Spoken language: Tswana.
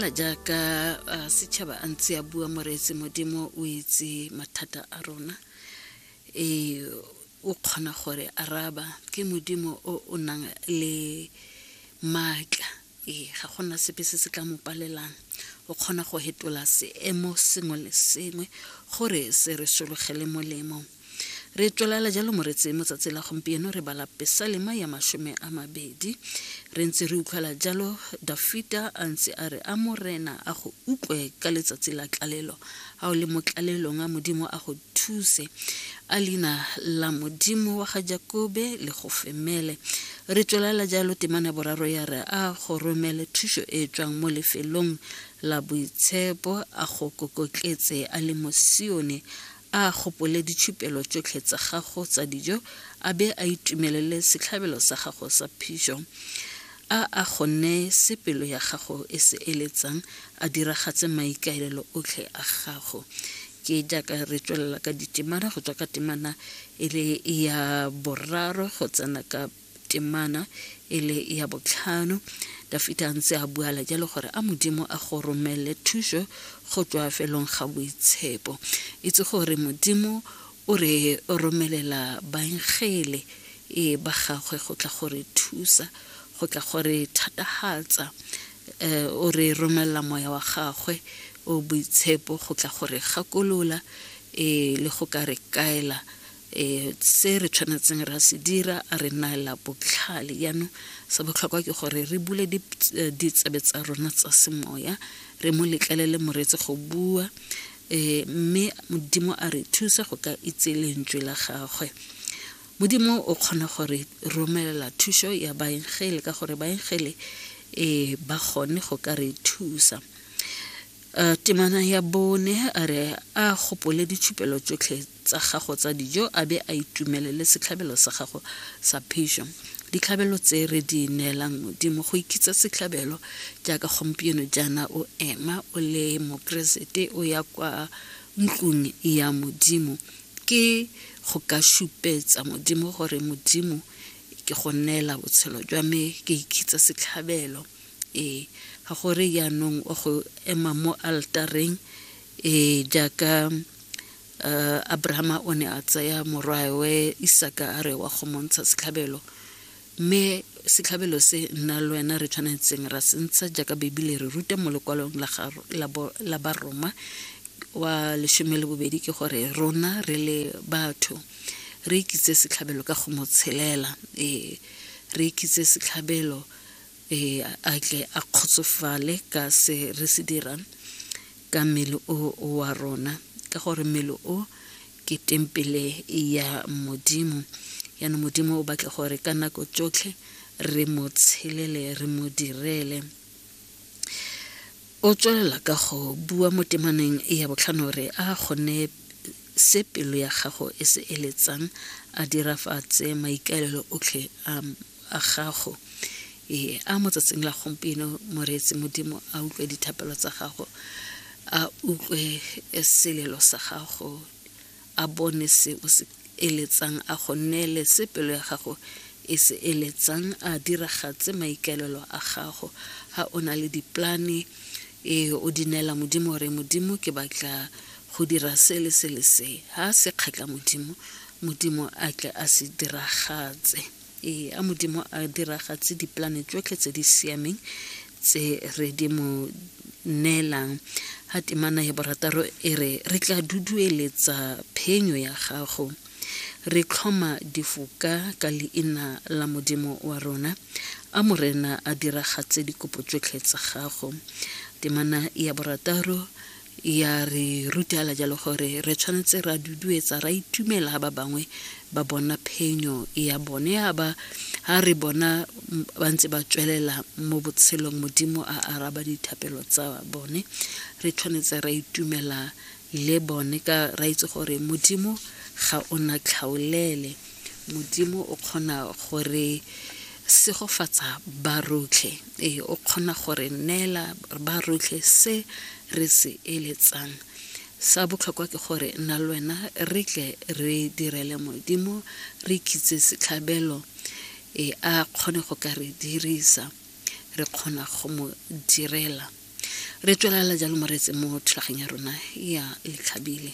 fela jaaka uh, setšhaba a ntse a bua moreetse modimo o itse mathata a rona e o kgona gore araba ke modimo o o nang le maatla ee ga gona sepe se se tla mo palelang o kgona go hetola seemo sengwe le sengwe gore se re sologele molemo re tswelela jalo moretse mo tsatsi la gompieno re bala pesalema ya masome a mabedi re ntse re utlwela jalo dafita a ntse a re a morena a go utlwe ka letsatsi la tlalelo a o le mo tlalelong a modimo a go thuse a leina la modimo wa ga jakobe le go femele re tswelela jalo temana boraro ya re a go romele thuso e tswang mo lefelong la boitshepo a go kokotletse a le mo sione A gopole ditšhupelo tšotlhe tsa gago tsa dijo, a be a itumelele setlhabelo sa gago sa phišo. A a go nee se pelo ya gago e se eletsang, a diragatse maikaelelo otlhe a gago. Ke jaaka re tswelela ka ditemana go tswa ka temana e le ya boraro go tsena ka temana e le ya botlhano dafita a ntse a buala jalo gore a modimo a go romelele thuso go tswa felong ga boitshepo itse gore modimo o re romelela baengele e ba gagwe go tla gore thusa go tla gore thatagatsa eh, o re romelela moya wa gagwe o boitshepo go tla gore gakolola e le go ka re kaela e se re tshwanetseng ra se dira a re naela botlhale jaanong se botlhokwa ke gore re bule eh, ditsebe tsa rona tsa semoya re mo letlelele moreetsi go bua um mme modimo a re thusa go ka itse lentswe la gagwe modimo o kgona gore romelela thuso ya baengele ka gore baengele um ba kgone go ka re thusa um temana ya bone a re a gopole ditshupelo tsotlhe tsa gago tsa dijo a be a itumelele setlhabelo sa gago sa phišo ditlhabelo tse re di neelang modimo go ikitsa setlhabelo jaaka gompieno jaana o ema o le mokeresete o ya kwa ntlong ya modimo ke go ka šupetsa modimo gore modimo ke go neela botshelo jwa me ke ikitsa setlhabelo ee ga gore yaanong o go ema mo altareng ee jaaka uh, abrahama o ne a tsaya morwaewe isaka a re wa go montsha setlhabelo mme setlhabelo se nna le wena re tshwanetseng ra se ntsha jaaka bebile re ruta mo lekwalong la baroma wa lesome le bobedi ke gore rona re le batho re ikitse setlhabelo ka go mo tshelela ee re ikitse setlhabelo e a tle a kgotsofale ka se re se dirang ka mmele o wa rona ka gore mmele o ke tempele ya modimo yana modimo o batla gore ka nako tsotlhe re mo tshelele re mo direle o tswelela ka go bua mo temaneng ya botlhano re a kgone se pelo ya gago e se eletsang a dirafatse maikaelelo otlhe a gago ee a mo tsatsing la gompieno moreetsi modimo a utlwe dithapelo tsa gago a utlwe selelo sa gago a bone se o se eletsang a go neele se pelo ya gago e se eletsang a diragatse maikaelelo a gago ga o na le diplane ee o di neela modimo re modimo ke batla go dira se le se le se ha se kgatla modimo modimo a tle a se diragatse ee a modimo a diragatse dipolane tsotlhe tse di siameng tse re di mo neelang ha temana ya borataro e re re tla dudueletsa phenyo ya gago re tlhoma difoka ka leina la modimo wa rona a morena a diragatse dikopo tsotlhe tsa gago temana ya borataro ya re rutela jalo gore re tshwanetse ra duduetsa ra itumela ga ba bangwe ba bona phenyo ya bone ya ba ha re bona ba ntse ba tswelela mo botshelong modimo a araba dithapelo tsa bone re tshwanetse ra itumela le bone ka ra itse gore modimo ga o na tlhaolele Modimo o kgona go re segofatsa ba rotlhe. Ee, o kgona go re neela ba rotlhe se re se eletsang. Sa botlhokwa ke gore nna le wena re tle re direle Modimo, re khitse setlhabelo e a kgone go ka re dirisa re kgona go mo direla re tswelela jalo moreetse mo thulageng ya rona ya letlhabile